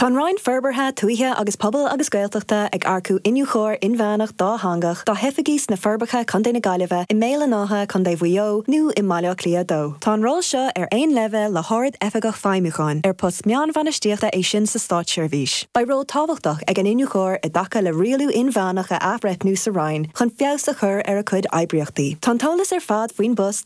Tá an Roinn Forbartha Tuaithe agus Pobail agus Gaeltachta ag earcú Iniúchóir Inmheánach Dátheangach dá hoifigí sna Forbacha, Co na Gaillimhe, i mBéal an Átha, Co Mhaigh Eo, nó i mBaile Átha Cliath 2. Tá an ról seo ar aon leibhéal le hArd-Oifigeach Feidhmiúcháin, ar post meánbhainistíochta é sin sa státseirbhís. Beidh ról tábhachtach ag an Iniúchóir i dtaca le rialú inmheánach a athbhreithniú sa Roinn chun feabhas a chur ar a cuid oibríochtaí. Tá an t-eolas ar fad faoin bpost,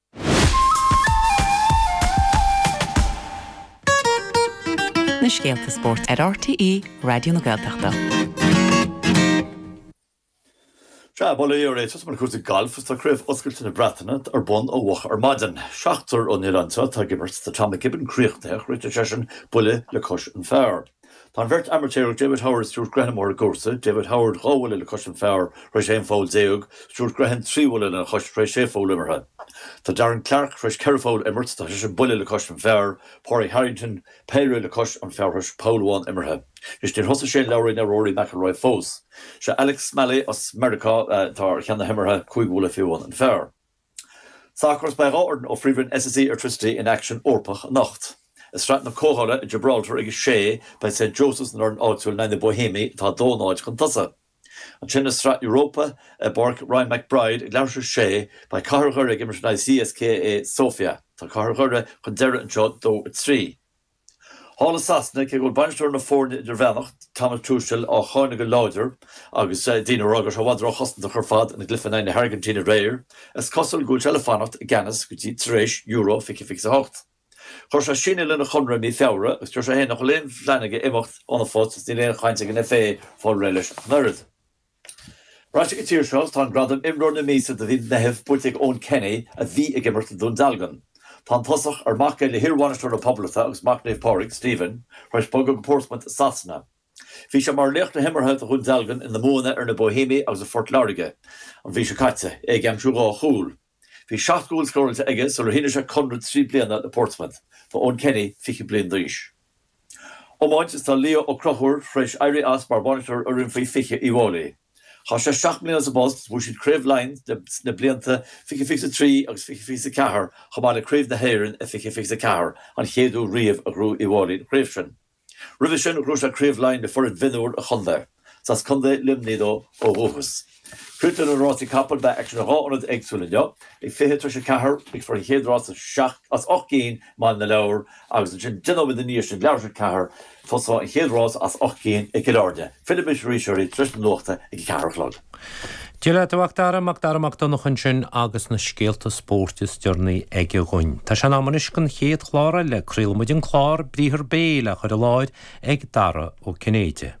na scéalta spóirt ar RTÉ Raidió na Gaeltachta. Sea, bail ó Dhia oraibh, tosóimid le cúrsaí gailf is tá Craobh Oscailte na Breataine ar bun ó mhoch ar maidin. Seachtar ón oileán seo atá ag imirt, tá Tom McKibbin críochnaithe, chríochnaigh seisean buille le cois an phar. Tá an bheirt amaitéarach David Howard, Stuart Grehan ar an gcúrsa, David Howard dhá bhuille le cois an phar tar éis 11 pholl, Stuart Grehan trí bhuille lena chois tar éis sé pholl imeartha. Tá Darren Clarke tar éis ceithre pholl imirt, tá seisean buille le cois an phar, Pádraig Harrington péire le cois an phar tar éis poll amháin imeartha. Anois níor thosaigh Shane Lowry ná Rory McIlroy fós. Sé Alex Smalley as Meiriceá atá ar cheann na himeartha, cúig bhuille faoi bhun an phar. Sacar is beidh dhá fhoireann ó Phríomhroinn SSE Airtricity in aicsean Eorpach anocht. I Sraith na Comhdhála i Gibraltar ag a sé, beidh St Joseph's an fhoireann áitiúil in aghaidh na Bohemians atá 2 0 chun tosaigh. Ansin i Sraith Europa i bPáirc Ryan McBride ag leathuair tar éis a sé, beidh Cathair Dhoire ag imirt in aghaidh CSKA Sofia. Tá Cathair Dhoire chun deiridh anseo 2 3. Thall i Sasana, cé go bhfuil bainisteoir na foirne, an Gearmánach, Thomas Tuchel, á cháineadh go láidir agus daoine ag rá go raibh sé i bhfad róchosantach ar fad ina gcluiche in aghaidh na hAirgintíne aréir, is cosúil go bhfuil sé le fanacht i gceannas go dtí tar éis euro 2028. Chuir sé síneadh lena chonradh i mí Feabhra agus deir sé féin nach bhfuil aon phlean aige imeacht óna phost agus níl aon chaint ag an FA fáil réidh leis ach an oiread. Ar ais chuig an tír seo is tá an gradam 'Imreoir na Míosa' do mhí an Mheithimh buaite ag Eoin Kenny a bhí ag imirt le Dún Dealgan. Tá an tosaí, ar mac é le hiarbhainisteoir na Poblachta agus mac Naomh Pádraig, Stephen, tar éis bogadh go Portsmouth i Sasana. Bhí sé mar laoch na himeartha do Dhún Dealgan ina mbuanna ar na Bohemians agus Phort Láirge an mhí seo caite, é ag aimsiú dhá chúl. Bhí seacht gcúl scóráilte aige sular shínigh sé conradh trí bliana le Portsmouth. Tá Eoin Kenny fiche bliain d'aois. Iomáint is tá Leo Ó Conchúir tar éis éirí as mar bhainisteoir fhoireann faoi 20 Uíbh Fháilí. Chaith sé seacht mbliana sa bpost is bhuaigh siad Craobh Laighean sna blianta fiche fiche is trí agus fiche fiche is ceathair chomh maith le Craobh na hÉireann i fiche fiche is ceathair, an chéad uair riamh a ghnóthaigh Uíbh Fháilí an chraobh sin. Roimhe sin ghnóthaigh sé Craobh Laighean le foireann mhionúr a chontae. Is as Contae Luimnigh dó ó dhúchas. Cuid de na rásaí capall beidh aicsean i dhá ionad éagsúil inniu. Ag 20 tar éis a ceathair rithfear an chéad rás as ocht gcinn i mBaile na Lobhar agus ansin deich nóiméad i ndiaidh sin leathuair tar éis a ceathair tosóidh an chéad rás as ocht gcinn i gCill Áirne. Fillfidh mé arís oraibh tar éis na nuachta ag a ceathair a chlog. Dialann Mhacdara, Macdara Mac Donncha ansin agus na scéalta spóirt is deireanaí aige dhuinn. Tá sé in am anois don chéad chlár eile. Craolfaimid an chlár Briathar Béil á chur i láthair ag Dara Ó Cinnéide.